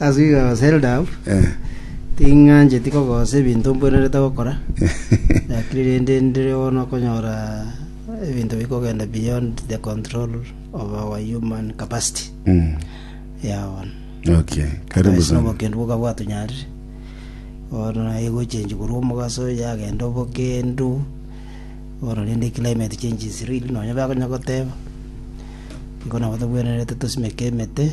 Ase igo Zeldaf tingancheti kogosa ebinto mbwenerete gokora, gaki rende ndire bono okonyora ebinto bikogenda beyond the control of our human capacity. Yao bono. Okay, karibu Ase sana. obokendu boka bwatunyarire. Bono naye gochenji korwa omogaso yagenda obokendu. Bono rende climate change is real nonya bakonya goteba. Igo nabo tobwenerete tosimeke emete.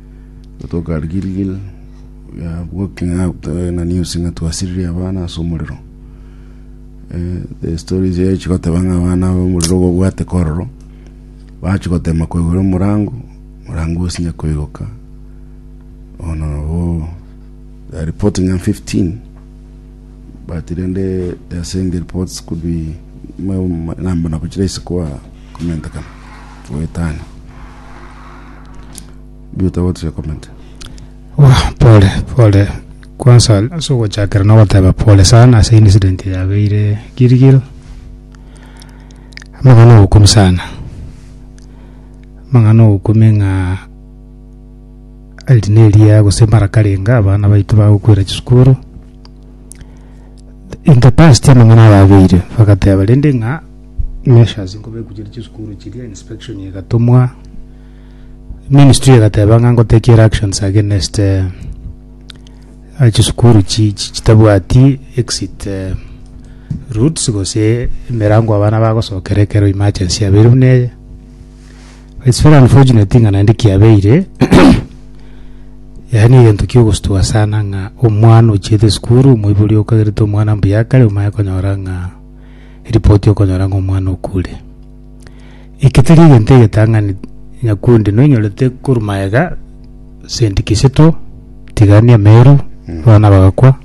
Gotoka Gilgil, ya walking out eh, na news ng'a twasiririe abana ase omorero. Eh, the stories ye chigoteba ng'a abana abo omorero obobwate kororo, bachigotema koigora omorango, omorango osinye koigoka. Ono nabo they are reporting ng'a 15 but rende they are saying the reports could be ma- ma- namba nabo chiraise kwa komentekana goetania Biuta what is your comment? Wa, pole pole kwanza ase ogochakera nogoteba pole sana ase incident yabeire Gilgil amang'ana obokumi sana amang'ana obokumi ng'a erinde eria gose mara karenga abana baito bagokwera chisukuru in the past amang'ana ayabeire bagateba rende ng'a measures nko beguchiri chisukuru chiria inspection igatumwa ministry igateba ng'a ngotekiera actions against eh, eh, chisukuru chi- chi- chitabwati exit eh, routes gose emerango abana bagosokera ekero emergency yabeire buna eye it's very unfortunate ng'a naende kiabeire yaani egento kiogostua sana ng'a omwana ochiete esukuru omoibori okagerete omwana mbuya kare omanye konyora ng'a eripoti okonyora ng'a omwana okure. Eki teri egento egetang'ani nyakundi noinyorete korwa magega Saint Kisitu tigani Emeru abana bagakwa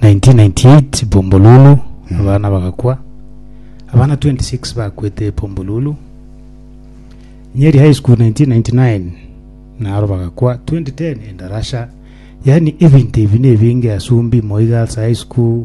1998 Bombolulu abana bagakwa abana 26 bakwete Bombolulu Nyeri High School 1999 naro bagakwa 2010 Endarasha yani ebinto ebi nebinge Asumbi Moi Girls High School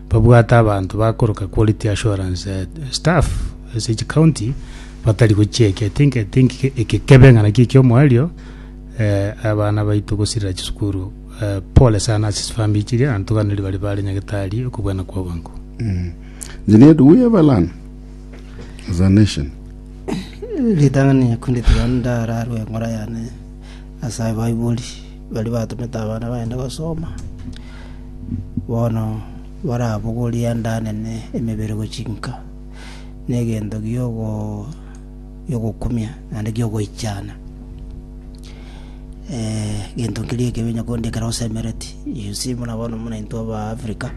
Babwate abanto bakoroka quality assurance staff ase each county batari gochieka i think i think ekekebe ng'a naki ekiomoerio eh, abana baito gosirira chisukuru eh, pole sana ase chifamiri chiria na ntoganeri bari bare nyagetari okobwana kwa obongo Engineer, do we have a land as a nation? ritang'ani yakunde tiga ndararwe eng'ora yane Ase abaibori baria batomete abana baane gosoma, bono barabogorie endanena emebere gochia inka, na egento gi'ogokumia naende gi'ogoichana. Egento keria ekebe onye korende ekero osemereti, you see buna bono buna intwe aba Africa,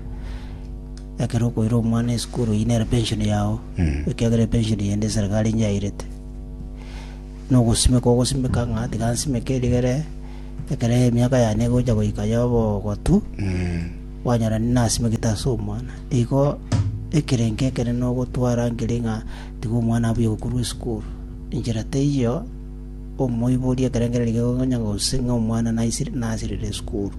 ekero okoira omwana esukuru, eyio nere pension yao, ekiagera epension eye nde eserikari nigo yairete. nogosimeka ogosimeka ng'a tiga nsimeke erigere, ekero emiaka yane egocha goika y'obogotu, kwanyora nasimekete ase omwana. Igo ekerengo ekere nogotwara nkeri ng'a tiga omwana abuya gokorwa esukuru. Enchera teiyo omoiboria ekerengererio ekero okonya gose ng'a omwana naisire nasirire esukuru.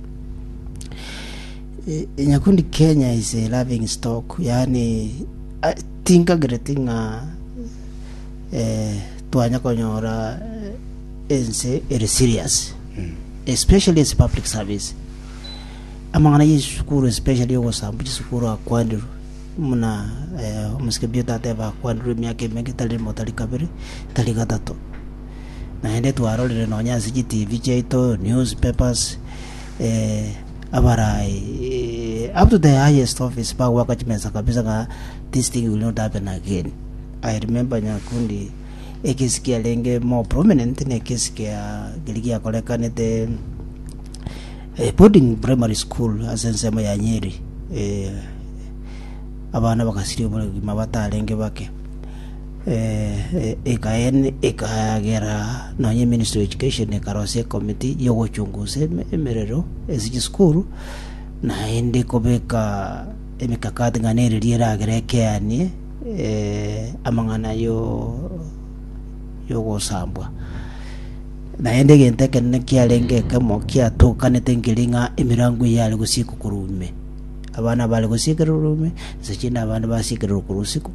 E- Nyakundi Kenya is a laughing stock, yaani ai- tingagireti ng'a eh, Twanya konyora ense ere serious especially ase public service amang'ana y'esukuru especially ogosamba chisukuru akwandirwe muna eh, omosike bio tateba akwandirwe emiaka emenge tari rimo tari kabere tari gatato naende twarorire nonya ase chitv chiaito newspapers eh, abarai eh, up to the highest office bagwaka chimesa kabisa ng'a this thing will not happen again I remember Nyakundi, ekesi kiarenge more prominent na ekesi kia keri giakorekanete eh, boarding primary school ase ensemo ya Nyeri eh, abana bagasiria obogima batarenge bake eh, eh, ekaen ekagera nonye ministry of education ekarosia ekomiti yogochungusa eme- emerero ase chisukuru naende kobeka emikakati ng'a neriria eragere ekeanie amang'ana y'ogosambwa. Naende egento ekenene kiarenge ekemo kiatokanete nkeri ng'a emerango eye yare gosiekwa korwa ime. Abana bare gosiekerwa korwa ime, inse chi'nda abande basiekererwa korwa isiko.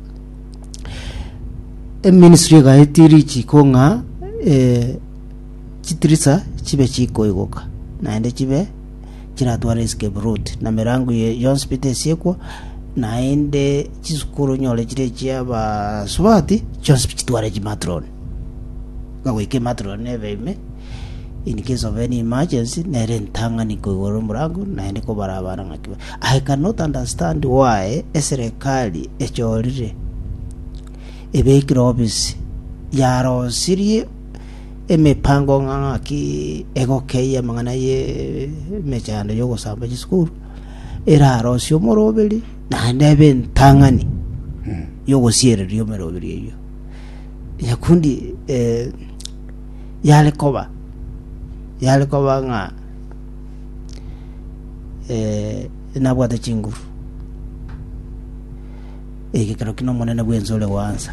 Eministry egaetia richiko ng'a chitirisa chibe chikoigoka naende chibe chiratware isiko eburuti, na emerango ye yonsi bete esiekwo, naende chisukuru nyore chire chi'abasubati chionsi bichitware chimatroni. Bagoika ematroni nebe ime, in case of any emergency, nere entang'ani koigora omorango, naende kobara abana ng'aki ba- I cannot understand why eserekari echorire ebekire obisi, yarosirie emepango ng'a ng'aki egokeyia amang'ana y'emechando y'ogosamba chisukuru, erarosie omoroberi, naende ebe entang'ani y'ogosiereria emeroberi eyio. Nyakundi eh, yare koba yare koba ng'a eh, nabwate chinguru ekero ki nomonene bw'ense ore goansa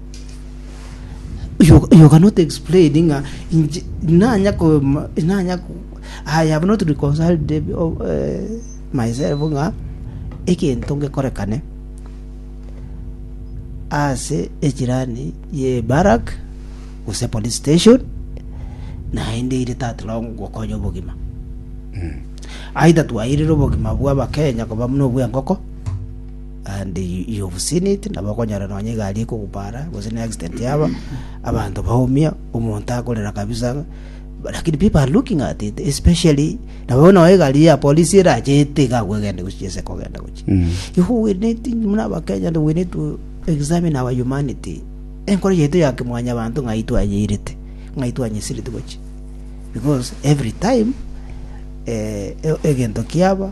You, you cannot explain ng'a inche nanya ko nanya ko I have not reconciled them, oh, eh, myself ng'a egento ngekorekane ase echirani ye barak gose police station naende ire tatirao gokonya obogima aidha twairire obogima bwa abakenya koba buna obwa engoko And you've seen it, nabo okonyora nonya egari ekogupara, gose ne accident yaba, abanto baumia, omonto akorera kabisa ng'a, but lakini people are looking at it, especially, nabo nonya egari ya polisi erachete iga agwo egende gochia ase kogenda gochia. Igo we need, muna abakenya, we need to examine our humanity. Enkoro yaito ya kimwanyabanto ng'ai twanyeirete, ng'ai twanyesireti gochia. Because every time, eh, e- egento kiaba,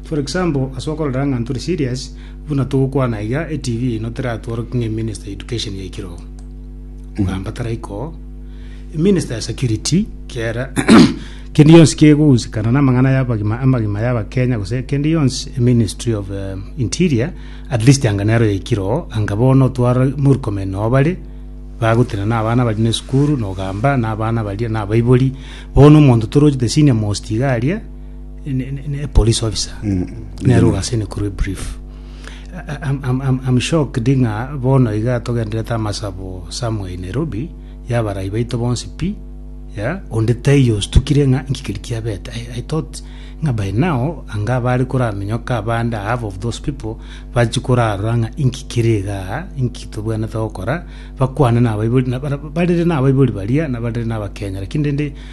For example, ase okororera ng'a ntore serious, buna togokwana iga, eTV eyino teratworokia ng'a eminister ya education yaikire oo. Omogamba taraika oo. Eminister ya security, kera kende yonsi kegogusikana namang'ana y'abagima, amagima y'abakenya gose kende yonsi, eministry of eh, interior, at least anga nero yaikire oo, anga bono otwara Murkomen noo bare, bagotenena na abana baria na esukuru, nogamba na abana baria na abaibori, bono omonto toroche the senior most iga aria, ne- ne- ne police officer nero gase nekuru ebrief I- I'm- I'm- I'm- I'm shocked ng'a bono iga togenderete amasabo somewhere in nairobi yabarai baito bonsi pi ya onde taiyo ostukire ng'a nkikeri kiabete I, i thought ng'a by now anga bari koramenyoka abande half of those people bachi korarora ng'a inkikere iga inki tobwenete gokora bakwane nabaibori na- bara- barere nabaibori baria na barere nabakenya lakini rende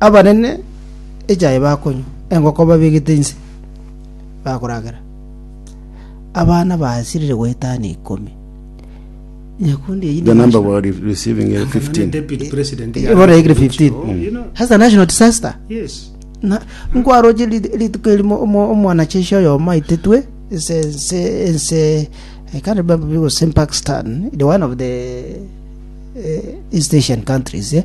Abanene echae bakonywa, engoko babegete inse bakoragera, abana basirire goetana ikomi. Nyakundi eyio The number we are re- receiving is 15. Deputy President ya- Ibora egire 15. That's a national disaster. Yes. Na nkwaroche rit- rituko erimo omo- omwanacheshi oyomo aitetwe ense ense ense I can't remember if it was in Pakistan, the one of the uh, East Asian countries, yeah?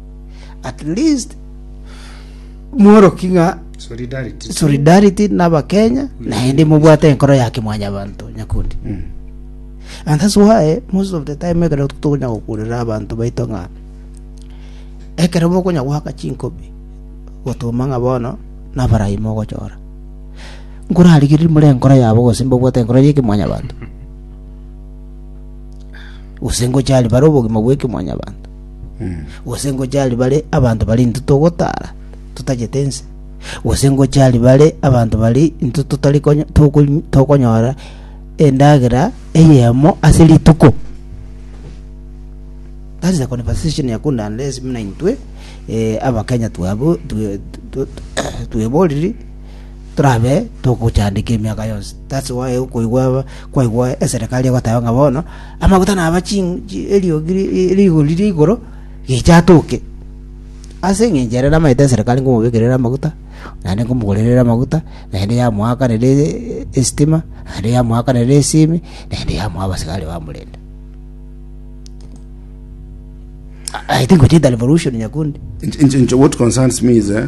at least mworoki ng'a Solidarity. solidarity n'abakenya naende mobwate enkoro ya kimwanyabanto nyakundi Mm. and that's why most of the time ekero tokonya gokurera abanto baito ng'a ekero bokonya goaka chinkobi gotuma ng'a bono nabarai mogochora nkorarigerie more enkoro yabo gose mbabwate enkoro ya ekimwanyabanto gose ngochari bare obogima bwa ekimwanyabanto gose ngochie aria bare abanto baria intwe togotaara totagete ense, gose ngochie aria bare abanto baria intwe totari konya- tokony- tokonyora endagera eyemo ase rituko. That is the conversation Yakundi address buna intwe eh, abakenya twabo twe- twe- tweboriri torabe togochandeka emiaka yonsi. That's why okoigwa kwaigwa eserekari egoteba ng'a bono amaguta naba chi chi- eriogi ri- ri- rigori ria igoro gicha atoke ase eng'encho ere namaete eserekari ngomobekerera amaguta naende nkomogorerer amaguta naende yamoakanera esitima naende yamoakanera esimi naende yamoa abasigari bamorenda I think gochia into revolution nyakundi. Inche- inche- inche what concerns me is eh,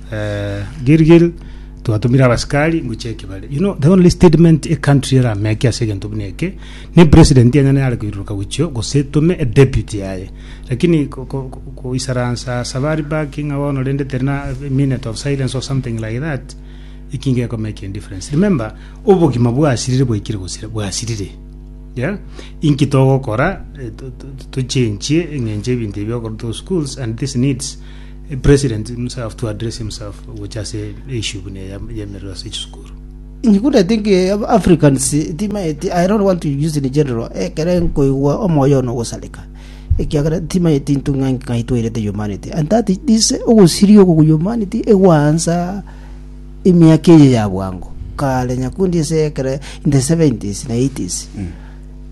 Eh, Gilgil twatumire abasikari ngochia ekebare you know the only statement a country erameke ase egento buna eke ne president enyene yare koiruruka gochio gose etume a deputy yaye lakini ko- ko- ko- koisaransa sabari baki ng'a bono rende teri na a minute of silence or something like that eki ngeko make a difference remember obogima bwasirire bwaikire gosira bwasirire yeah inki togokora eh, to- to- to- tochenchie eng'enche ebinto ebi okorwa to schools and this needs A president himself to address himself gocha ase eissue buna eya y'emerero ase chisukuru. You could, I think, eh, Af- Africans, eh, timaeti, I don't want to use in general, ekere nkoigwa omoyo ono ogosareka, ekiagera timaeti intwe ng'a ng'a itwairete humanity, and that is this ogosiria ogo humanity egwansa emiaka eye ya bwango, kare nyakundi ase ekere in the 70s na 80s,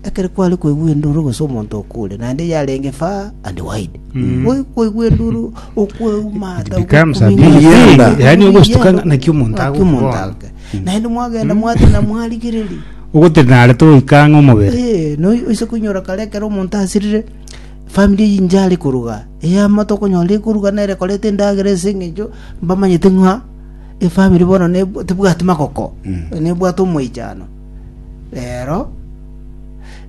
Ekero kware koigwa enduru gose omonto okure, naende yarenge faa and wide, gwe koigwa enduru okweumata, It becomes a big okominyoka, thing. Yaani ogostuka okominyoka, naki omonto naki omonto agokwana. ake. naende mwagenda mwatena mwarigereria ogotenare toika ang'e omobere Eh, no oise koinyora kare ekero omonto asirire family eye inche are koruga eyemo tokonyora ekoruga nere ekoreta endagera ase eng'encho mbamanyete ng'a efamiri bono neb- tebwati magoko nebwate omoichano Reero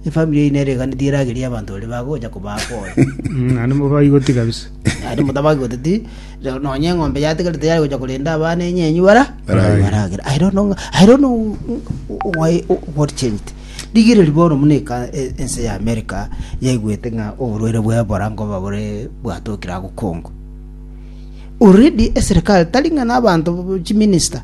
efamiri yaino ereganetie eragerie abanto baria bagocha kobaa kore. Mm, Naende mobaigoti kabisa. Naende motabaki goteti, rero nonye eng'ombe yatigarete yari gocha korenda abana enyenyu bara Baragere. baragere. I don't know, I don't know why, what changed. Rigereria bono muna eka- e- ense ya America yaigwete ng'a oborwaire bwa Ebola nkoba bore bwatokire agokongo. Already eserikali tari ng'a n'abanto chiminista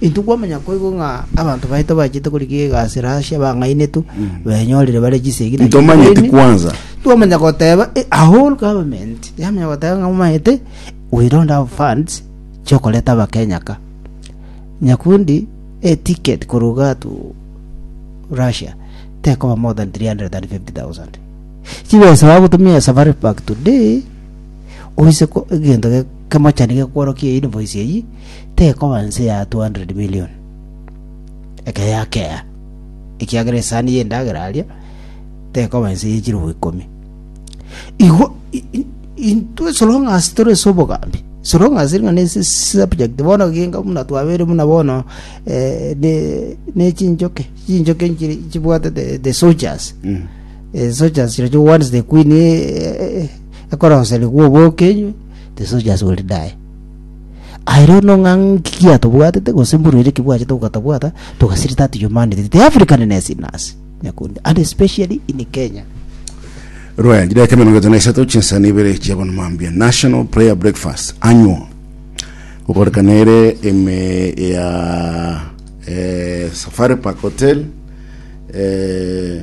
Intwe kwamanya koigo ng'a abanto baito bachete korigia egasi Russia bang'ainetwe, benyorire bare chisegi na Ntomanyeti chinkuni. kwanza. Twamanya goteba eh, a whole government yamanya goteba ng'a momanyete we don't have funds chiokoreta abakenya ka. Nyakundi a ticket koruga to Russia tekoba more than 350,000. Chibesa bagotumia ya safari pack today oise ko egento ge- kemochani gekworokia invoice eyi tekoba nse ya 200 million ekero yakea, ekiagera esani y'endagera aria tekoba nse ye chirobo ikomi. Igo i- i- intwe so long as tore ase obogambi so long as ring'ana ase subject bono genga buna twabeire buna bono eh, ne ne chinchoke chinchoke nchiri chibwatete the soldiers Mm. Eh, soldiers chiro chio once the queen eh, eh, ekoroserigwa obokenywe the soldiers will die Aye rero no ng'a nki giatobwatete, gose mbunu ere ki bwachete gokatabwata, togasiri that humanity, the Africanness in us, Nyakundi, and especially in Kenya. Rwaya jira eke emerongo etano isato chinsani ibere chia bono mambia National Prayer Breakfast Annual gokorekana ere ime ya eh, Safari Park Hotel eh,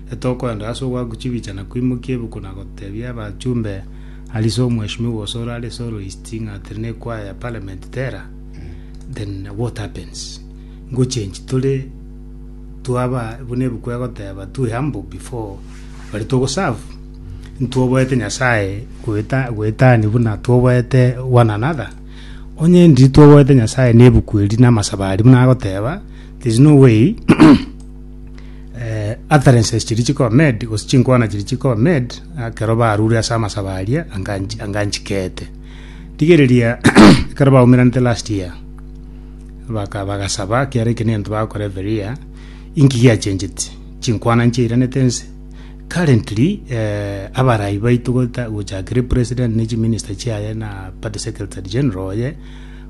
Etokwenda ase ogwaku chibicha na kwimokia ebuku na gotebia abachumbe Alice Omweshimiwa Osoro are soloist ng'a tiri ne choir ya parliament tera then what happens go change tore twaba buna ebuku egoteba too humble before bari togo serve ntwoboete Nyasaye goeta goetania buna twoboete one another onye ndiri twoboete Nyasaye ne ebuku eri na amasabo aria buna agoteba there's no way eh, utterances chiria chikoba made gose chinkwana chiria chikoba made ekero barure ase amasabo aria anga nchi- anga nchikete rigereria ekero baumeranete last year baka bagasaba ekiara eke nento bagokora every year inki giachenchete chinkwana nchiairanete ense currently eh, abarai baito gota gochakere president ne chiminister chiaye na party secretary general oye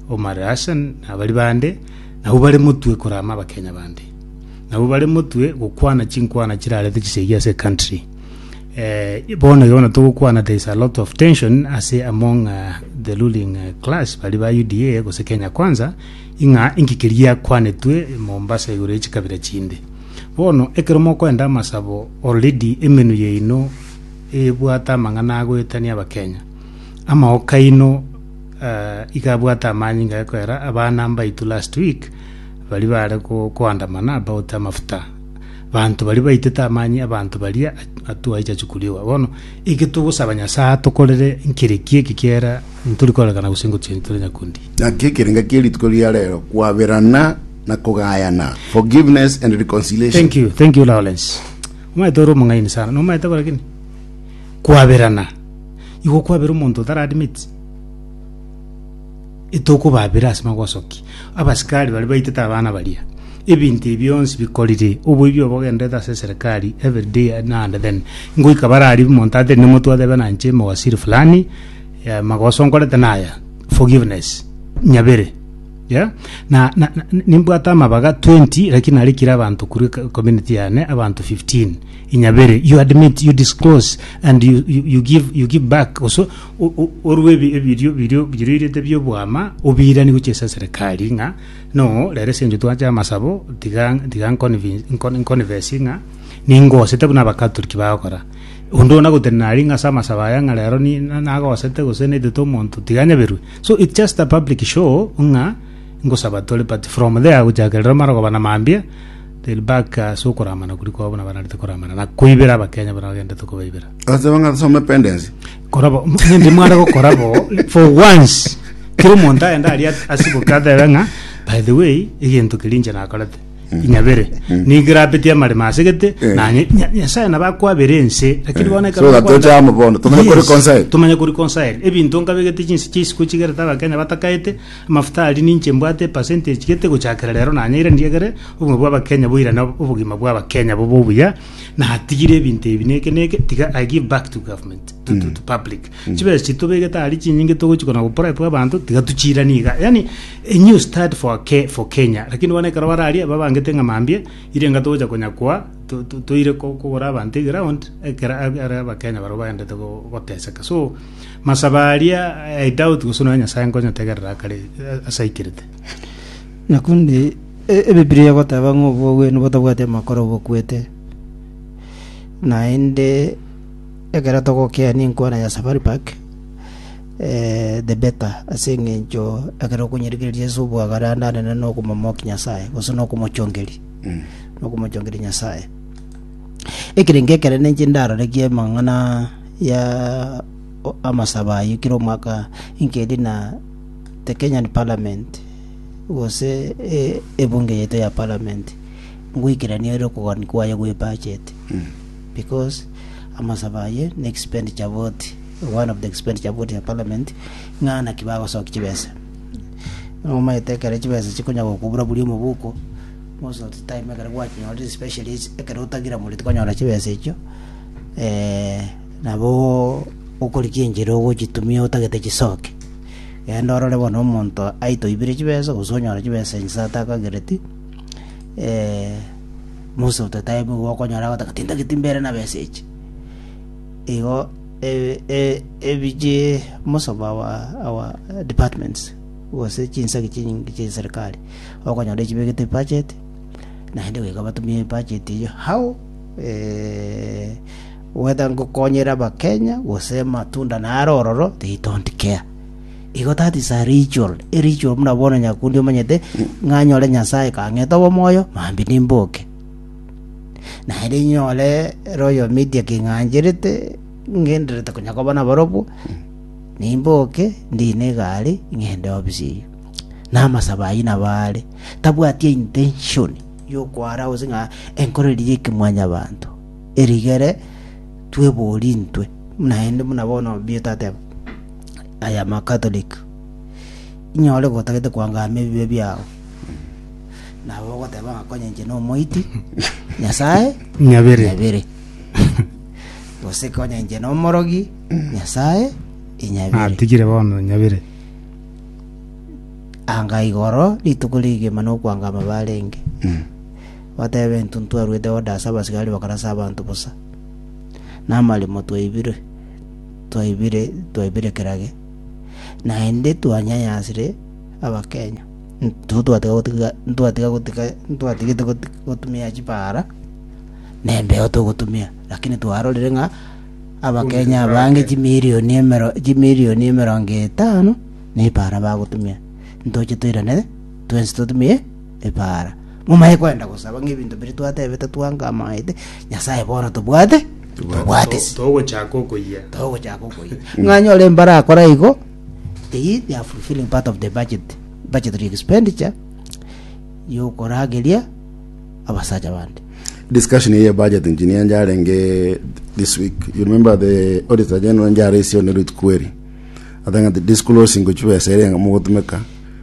omar hassan na bari bande nabo bare motwe korama abakenya bande Nabwo bare motwe gokwana chinkwana chirarete chisegi ase country. Eh, bono iga bono togokwana there is a lot of tension ase among uh, the ruling uh, class bari ba UDA gose Kenya Kwanza ing'a inki keria kwanetwe Mombasa igoro ya chikabira chinde. Bono ekero mokoenda amasabo already emenwa yaino ebwate amang'ana agoetania abakenya. Amaoka aino uh, iga abwate amanyinga ekoera abana mbaitu last week Baria baare koandamana abaote amafuta, banto baria baitete amani ’abanto baria atwaicha chikoriogwa. Bono eke togosaba Nyasae atokorere nkere ki eke kiera ntori koororekana gose ngochia ntore nyakundi. Naki ekerenga kie rituko ria rero kwaberana na kogayana, forgiveness and reconciliation. Thank you, thank you Lawrence. Omanyete ore omong'aini sana, nomanyete bo lakini? Kwaberana. Igo kwabera omonto otara admit. Etokobaabera ase magosoki. Abasikari baria baitete abana baria. Ebinto ebi bionsi bikorire. Oboibi obo bogenderete ase eserekari every day na and then. Ngoika bare aria omonto aterire omotwe otebe na inche mowaziri fulani eh, magoso nkorete naya. Forgiveness. Nyabere. Yeah? Na, na, na nimbwate amabaga 20 lakini narikire abanto kuri co- community yane abanto 15. Inyabere. You admit, you disclose and you, you, you give you give back also o- o- orue ebi- ebirio birio biroirete bi'obwama obiiranie gochia ase eserekari ng'a no rero ase encho twache amasabo tiga tiga nconvin- nco- nconfess ng'a ningosete buna abakatoliki bagokora onde ona gotenena aria ng'a ase amasabo aya ng'a rero ni- na- nagosete gose naitete omonto tiga anyaberwe so its just a public show ng'a ngosaba tore but from there gochaka rero mara koba na mambia till back ase okoramana koria kwabo buna bararete koramana na koibera abakenya buna bagenderete kobaibera. Agateba ng'a some pendensi. korabo nende mware gokora bo for once kera omonto aende aria asiboke atebe ng'a by the way egento keria inche nakorete inyabere nigo erabetie amaremo asegete Eh. nanye Nya- nyasae nabo akwabere ense lakini bono ekero So that bakwanda- tochama bono, tomanye ko reconcile. tomanye ko reconcile ebinto nkabegete chinse chia isiko chigerete abakenya batakaete amafuta ari ninche mbwate percentage gete gochakera rero nanyeire ndiegere obogima bwa abakenya boirane obogima bwa abakenya bobe obuya natigire ebinto ebi neke neke tiga i give back to government to, to, to public chibesa chitobegete ari chinyinge togochi kona goprep abanto tiga tuchirani iga yani a new start for, Ke, for kenya lakini bono ekero bararia babangete ng'a mambia irenga togocha konyakwa to- to- toire ko- kogora abanto eground ekero ab- are abakenya barabwo baendete go- goteseka so masaba aria i doubt gose nonya nyasae nkonyotegerera akare eh, ase aikirete Naende Ebibilia egoteba ng'a obogwenu botabwati amakoro bokwete. Naende ekero togokeani enkwana ya safari park eh, the better ase eng'encho ekero okonyirikireria Yeso obwaga naende aye nere nokomomokia Nyasaye gose nokomochongeri nokomochongeri Nyasaye. Ekerengo ekere ninche ndarorekia amang'ana ya amasabo ayio kera omwaka nkeria na the Kenyan parliament gose ebunge yaito ya parliament, ngoikeranie ere okogani kwaye gwe budget because amasabo aye ne expenditure vote, one of the expenditure vote ya parliament ng'a naki bagosoki chibesa. Omanyete ekero chibesa chikonya gokobura buri omobuko, most of the time ekero gwachinyorire especially ase ekero otagire mori tikonyora chibesa echio eh, nabo okorigia enchera ogochitumia otagete chisoke. Genda orore bono omonto aitoibire chibesa gose onyore chibesa inche tata akagereti, eh, Musa ototaebwe igo okonyora agotaka tintageti mbere na besa echi. Igo e- e- ebiche most of our, our departments gose chinsagi chinyinge chia eserikali okonyora echibegete ebudget naende goika batumie ebudget eyio how eh, Gweta ngokonyere abakenya gose matunda naro ororo they don't care. Igo that is a ritual, a ritual buna bono Nyakundi omanyete ng'a nyore Nyasaye kang'ete obomoyo mambia nimboke. Naende nyore Royal Media king'ancherete ngendererete konya koba nabarobwo nimboke ndine egari ng'ende office eyio. Na amasabo ayio nabo are tabwati intention yokwara gose ng'a enkoreri y'ekemwanyabanto. erigere twebori intwe naende buna bono obieta ateba I am a Catholic inyore gotagete koangama ebibe biago nabo ogoteba ng'a konya inche na omoiti Nyasaye Nyabere. nyabere gose konya inche na omorogi Nyasaye inyabere Natigire bono nyabere. anga igoro rituko rigima nokwangama barenge batebe, Intwe ntitwarwete godasa abasigari bakarasa abanto bosa, na amaremo twaibire, twaibire, twaibire kera ge. Naende twanyanyasire Abakenya. Intwe twatiga gotiga, ntwatiga gotiga, ntwatigete goti- gotumia chipara, na embeo togotumia, lakini twarorire ng'a Abakenya abange chimilioni emero, chimilioni emerongo etano, na epara bagotumia. Ntoche toirane, twensi totumie epara. Momaye kogenda gosaba ng'ebinto biria twatebete twanka amaete, Nyasae bono tobwate, tobwate ase Togochaka okoyia. togochaka okoyia ng'a anyore mbare akore igo eyio they are fulfilling part of the budget budgetary expenditure yokorageria abasacha bande discussion eye budget engineer njarenge this week you remember the auditor general njare isio ne root query atanga the disclosing gochibesa ere mogotumeka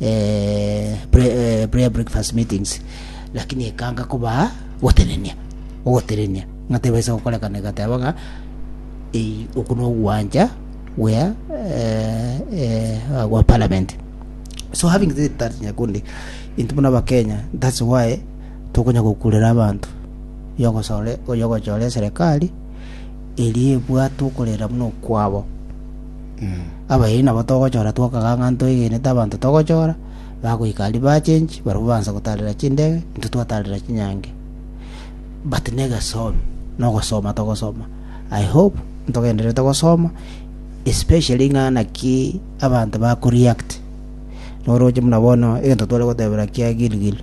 eh, pre- eh, prayer breakfast meetings lakini ekanga kobaa gotenenia ogotenenia ng'atebaisa gokorekana egateba ng'a ei oku nogwanja wea eh, eh, gwa parliament so having said that nyakundi intwe buna abakenya thats why tokonya gokurera abanto yogosore oyogochora eserikali eri ebwate okorera buna okwabo Abayio nabo togochora twokaga ng'a ntwegenete abanto togochora, bagoika aria bachenchi, barabwo baansa gotaarera chindege, intwe twataarera chinyangi. But negesomi, nogosoma togosoma. I hope ntogendererete gosoma, especially ng'a naki abanto ba ko-react. Noroche buna bono egento tware gotebera kia Gilgil.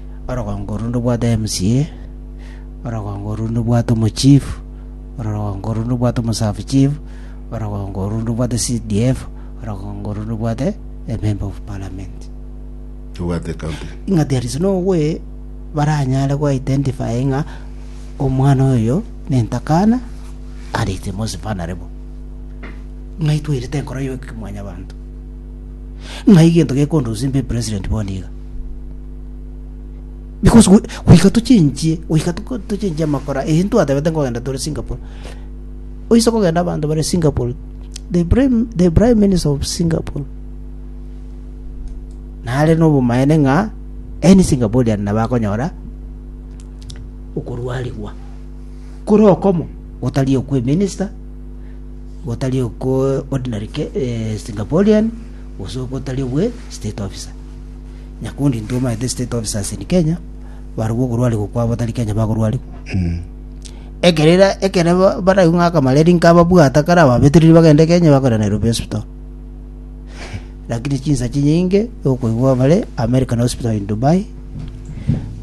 orogongo orwo ndobwate MCA, orogongo orwo ndobwate omochief, orogongo orwo ndobwate omosav chief, orogongo orwo ndobwate CDF, orogongo orwo ndobwate ememba of parliament. Obwate ecounty. Ng'a there is no way baranyare go identify ng'a omwana oyo nentakana and it's most vulnerable. Ng'ai twairete enkoro y'ekimwanyabanto. Ng'ai gento gekondusimba epresident bono iga. Because go- goika tochenchie goika toko- tochenchie amakora eye ntwatebete nkogenda tore singapore oise kogenda abanto bare singapore the prime, the prime minister of singapore nare nobomaene ng'a any singaporean nabo akonyora okorwarigwa kore okomo gotari okwe minister gotari okwo ordinary ke- eh, singaporean gose gotari obwe state officer Nyakundi intwe omanyete state officers in Kenya barobwo okorwarigwa kwa batari Kenya bakorwarigwa ekero ira- ekero ba- baraigwe ng'a akamareri nkababwata kare ababetereri bagende Kenya bakorera Nairobi hospital lakini chinsa chinyinge okoigwa bare American hospital in Dubai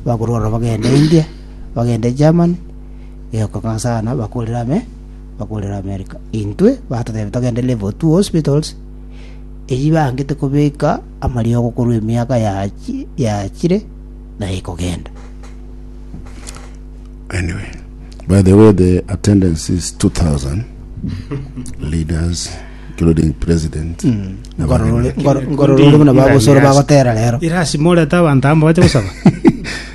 bakorwarwa bagende India bagende Germany eokong'a sana bakorera ame bakorera America intwe batotebia togende level two hospitals eyio bangete kobeka amariogo korwa emiaka yaachire na ekogenda. Anyway, by the way, the attendance is 2,000 leaders, including president. Hmm. Ngororore buna bagosoro bagotera rero. Irasi morete abanto amo bache gosaba.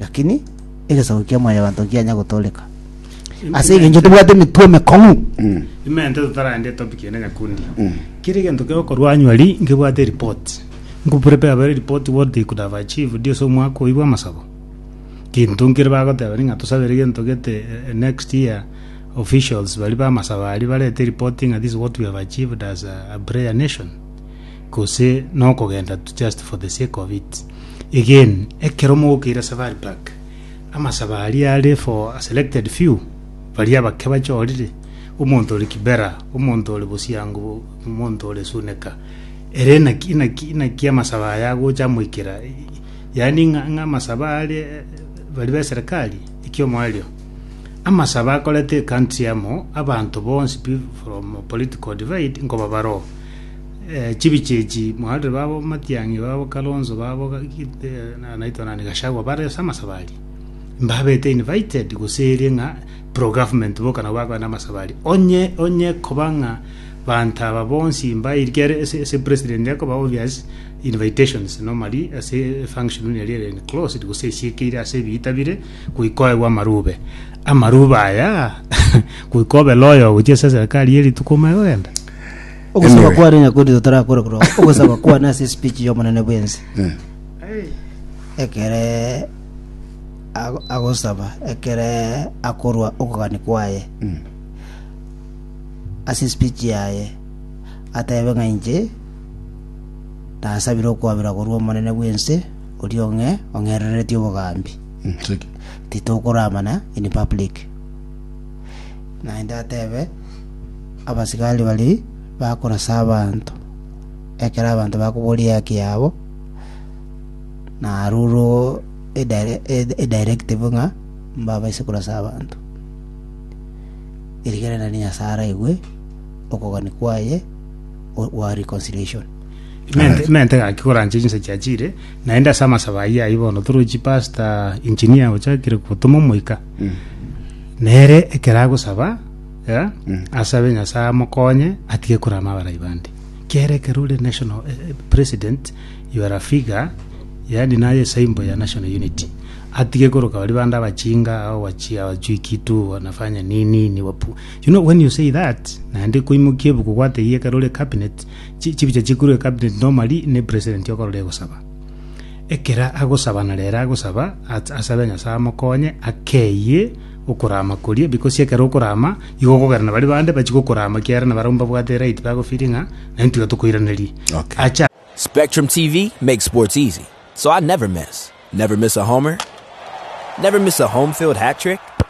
Lakini egesaku kia Mwanyabanto nkianya gotooreka, ase engencho tobwate emetwe emekong'u. Imente totaraende topic ende nyakundi kera egento kegokorwa annually nkebwate report nkoprepare bare report what they could have achieved ase omwaka oyio bwa amasabo gento nkere bagoteba ng'a tosabere gento gete eh, next year officials bari ba amasabo aria barete report ng'a this is what we have achieved as a, a prayer nation gose nokogenda tu just for the sake of it. Again, ekero mogokeira Safari Park, amasabo aria are for a selected few, baria abake bachorire, omonto ore Kibera, omonto ore Bosiango, omonto ore Suneka. Ere naki, naki, naki amasabo aya agocha amoikera, yaani ng'a ng'a amasabo are bari be serikali, ekio moerio. Amasabo akorete country amo, abanto bonsi pi- from political divide nkoba baroo. Chibiche echi Moharire babo, Matiang'i babo, Kalonzo babo, naitwa nani, Gachagua bare ase amasabari, mbabete invited gose ere ng'a pro government boka nabo bakoenda amasabari. Onye onye koba ng'a banto aba bonsi mbairikia ere ase ase president akoba obvious invitations normally ase function buna eria ere enclosed gose esiekeire ase ebiita bire goika oegwe amarube. Amarube aya goika obe loyal gochia ase eserikari eye rituko omanye kogenda. Ogosaba Anyway. kwane nyakundi totarakora korwa ogosaba kwane ase espeech y'omonene bwensi Eh. ekere ago- agosaba ekere akorwa okogani kwaye ase espeech yaye atebe ng'a inche nasabire okwabera korwa omonene bwensi oria ong'e ong'erereretie obogambi Mm, cheki. titokoramana in public Naende atebe abasigari baria bakorasa abanto, ekero abanto bakoboria eaki yabo, narurwo edire- ed- edirective ng'a mbabaise korasa abanto. Erigerereria Nyasaye araigwe okogania kwaye o- gwa reconciliation. Mente- mente gaki koranche chinsa chiachire, naende ase amasabo ayio ayio bono toroche pastor engineer ochakire gotoma omoika. Nere ekero agosaba, eh, asabe Nyasae amokonye atige korama abarai bande. Kiagera ekero ore national eh, eh, president, you are a figure, yaani naye symbol ya national unity. Atige koroka bari bande abachinga, au wachi, awajui kitu, wanafanya nini, ni wapu. You know, when you say that, naende koimokia ebuku gwatebia ekero ore cabinet, chi- chibicha chikurwe cabinet normally ne president okorora egosaba. Ekero agosaba na rere agosaba, at- asabe Nyasae amokonye akeyie okorama koria, because ekero okorama, igo okogera na baria bande bachie gokorama ekiagera na barabwo mbabwate eright bagofeeling ng'a naintwe iga tokoiraneria. Okay. Acha Spectrum TV makes sports easy, so I never miss. Never miss a homer. Never miss a home field hat trick.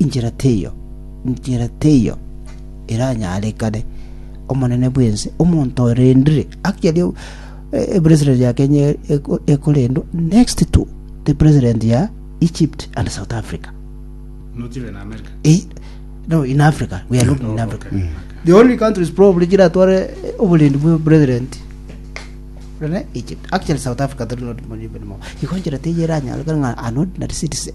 “Inchera teiyo, inchera teiyo eranyarekane Omonene bw'ense omonto orendire, aki aria president ya Kenya ekorendwa next to the president ya Egypt and South Africa. Not even America. Eh, no, in Africa. We are looking in Oh, Africa. okay, okay. The only countries probably chiratware oborendi bwa president rene Egypt. Actually, South Africa, they're not even more. Igo inchera teiyo eranyarekane ng'a an ordinary citizen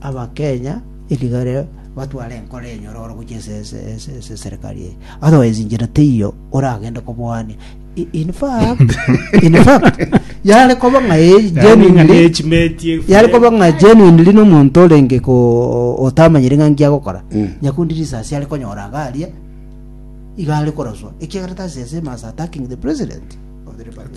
Abakenya erigare batware enkoro enyororo gochia ase serikari eye. Otherwise inchera teiyo oragende koboania. In fact, in fact, yare koba ng'a genuinely yari koba ng'a genuinely n'omonto orenge ko otamanyire ng'a nki agokora mm. nyakundi risasi ari konyora agaria iga ari koroswa ekiagera tasi ase must attacking the president of the republic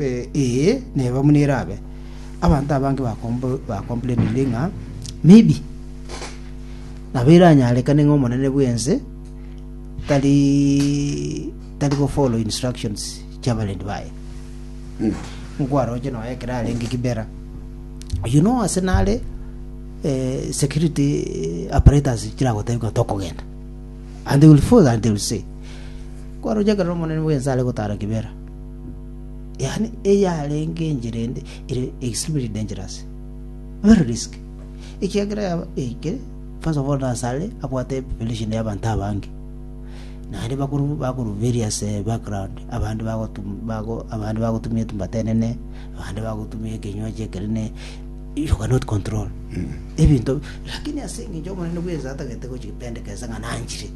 Ee, neba buna erabe. Abanto abange bakomplaininire ng'a maybe nabo eranyarekane ng'a omonene bw'ense tari tari go follow instructions chi'abarwni baye nkwaroche nonya ekero arenge Kibera oyio no ase nare eh, security apparatus chiragotebia ng'a tokogenda and they will follow and they will say kwaroche ekero omonene bw'ense are gotara Kibera yaani eyarenge enchera ende ere extremely dangerous very risk ekiagera yaba eke first of all nasare abwate population y'abanto abange naende bakuru bakuru various eh, background abandi bagotum bago abandi bagotumia etumba tenene abandi bagotumia ekenywaji ekenene you cannot control ebinto lakini ase engencho omonene bwensa atagete gochipendekesa ng'a nanchire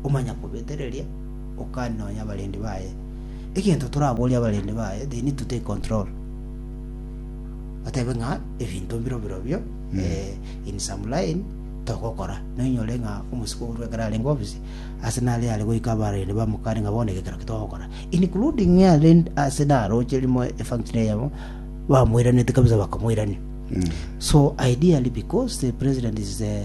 omanya kobetereria Okan nonya abarendi baye. Egento toraborie abarendi baye, they need to take control. Batebe ng'a ebinto mbiro birobio eh, in some line togokora. Noinyore ng'a omosiko orwe ekero arenge office, ase nare are goika abarendi bamokane ng'a bono egekero kitogokora. Including are ase naroche rimo efunction eyemo, bamoiranete kabisa bakamoirania. So ideally because the president is the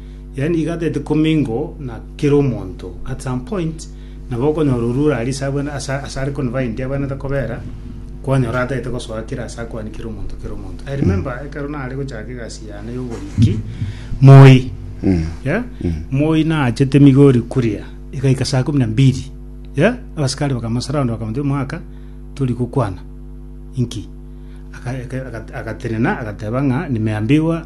yaani iga teti commingle na kera omonto at some point nabo okonyora orure aria ase abwene ase ase are confined abwenerete kobera kwanyora atagete gosoa kera ase akwane kera omonto kera omonto i remember ekero nare gochaka egasi yane ya oboriki moi yeah? moi naachete migori kuria igaika saa kumi na mbili yeah? abasikari bakamosurround bakamotebia mwaka tori gokwana inki Aka- aka- aka- agatenena agateba ng'a nimeambiwa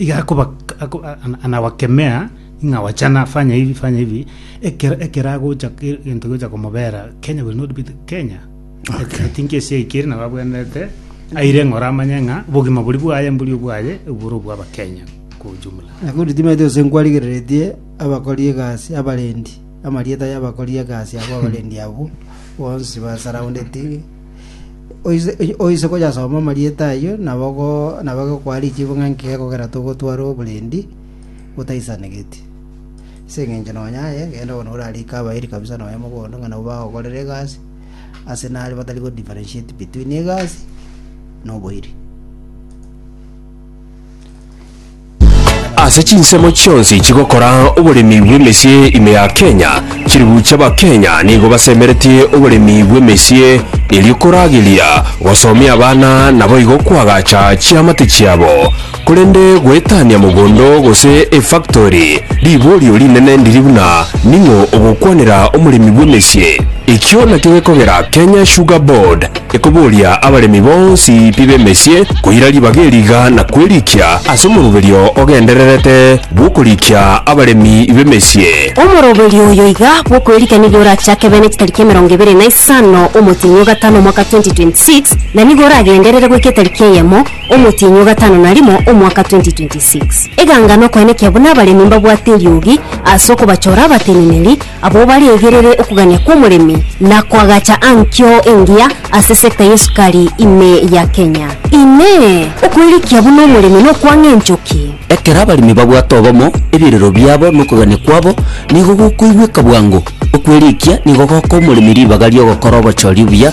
iga akoba ako- a- ana- anawakemea ng'a wachana fanya hivi fanya hivi ekero ekero agocha ke- gento gocha komobera kenya will not be the kenya Okay. i think ase aikere nabo abwenerete aire ng'a oramanye ng'a obogima bori bwaye mbori obwaye obore obwa abakenya kwa ujumla Nabo ritimete ase nkwarigereretie abakori egasi abarendi amarieta y'abakori egasi abwo abarendi abwo bonsi ba surrounded Oise- oy- Oise koyasoma amarieta ayio nabo go- nabo agokwa richibu ng'a inki gekogera togotwara oborendi botaisanegeti. Ase eng'encho nonya aye, genda bono orarike abairi kabisa nonya mogondo ng'a nabo bagokorera egasi ase nare batari go differentiate between egasi na oboiri. Ase chinsemo chionsi chigokora oboremi bw'emesie ime ya Kenya, chiribuche Abakenya nigo basemeretie oboremi bw'emesie erio korageria gosomia abana naboigo koagacha chiamate chiabo. Korende goetania mogondo gose efactori riborio rinene ndiri buna ning'o ogokwanera omoremi bw'emesie. Ekio nakio gekogera Kenya Sugar Board Ekoboria abaremi bonsi pi b'emesie koira ribaga eriga na kwerikia ase omoroberio ogendererete bw'okorikia abaremi b'emesie. Omoroberio oyo iga bw'okwerikia nigo orachake bene chitariki emerongo ebere na isano omotienyi o gatano omwaka 2026 na nigo oragenderere goika etariki eyemo omotienyi o gatano na rimo omwaka 2026. Eganga nokoenekia buna abaremi mbabwate eriogi ase okobachora abateneneri Abwo baregerere okogania kw'omoremi na koagacha ankio engiya ase sector y'esukari ime ya Kenya. Inee! Okoirikia buna omoremi nokwang'a enchoki? Ekero abaremi babwate obomo, ebirero biabo na okogania kwabo nigo gokoigweka bwango. Okwerikia nigo gokoa omoremi ribaga ri'ogokora obochori obuya,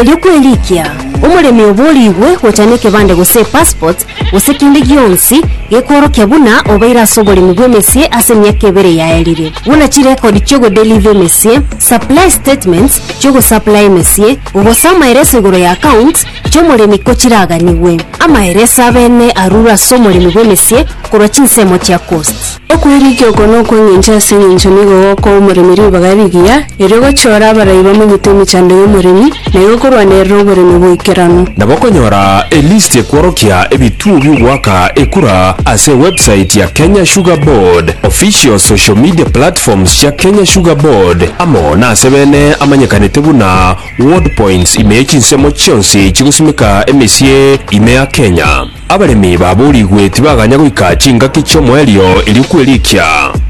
Erio kwerikia omoremi oborigwe gocha nekebande gose epassport gose kende gionsi gekworokia buna obeire ase oboremi bw'emesie ase emiaka ebere yaerire, buna chirekodi chi'ogodeliva emesie, supply statements chi'ogosaplaya emesie, gose amaereso igoro ya accounts chi'omoremi ko chiraganigwe. Amaereso abene arure ase omoremi bw'emesie korwa chinsemo chia cost. Okwerigia oko nokw'engencho ase engencho nigo gokoa omoremi ribaga rigiya, erio gochiora abarai bamanyete emechando y'omoremi, na igo korwanerera oboremi bw'eikerano. Nabo okonyora elisti ekworokia ebituo bi'ogoaka ekura ase ewebsite ya Kenya Sugar Board, official social media platforms chia Kenya Sugar Board, amo nase bene amanyekanete buna Ward Points ime ye chinsemo chionsi chigosimeka emesie ime ya Kenya. Abaremi baboorigwe tibaganya goika chingaki chi'omoerio erio kwerikia.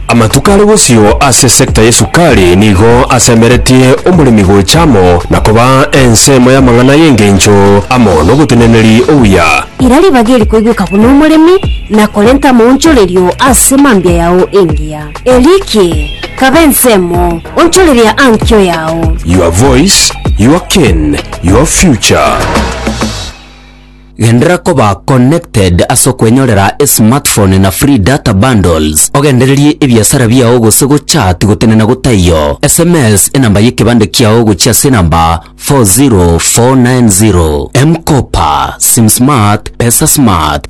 Amatuko are bosio ase esector y'esukari nigo asemeretie omoremi gocha amo na koba ensemo y'amang'ana y'engencho amo n'oboteneneri obuya. Ira ribaga eri koigweka buna omoremi na korenta amaonchorerio ase mambia yao engiya. Erikie, kaba ensemo, onchoreria ankio yao. Your voice, your cane, your future. Genderera koba connected ase okwenyorera esmartphone na free data bundles, ogendererie ebiasara biao gose gochat gotenena gotaiyo, sms enamba yekebande kiao gochia ase enamba 40490. M-Kopa, Sim Smart, Pesa Smart.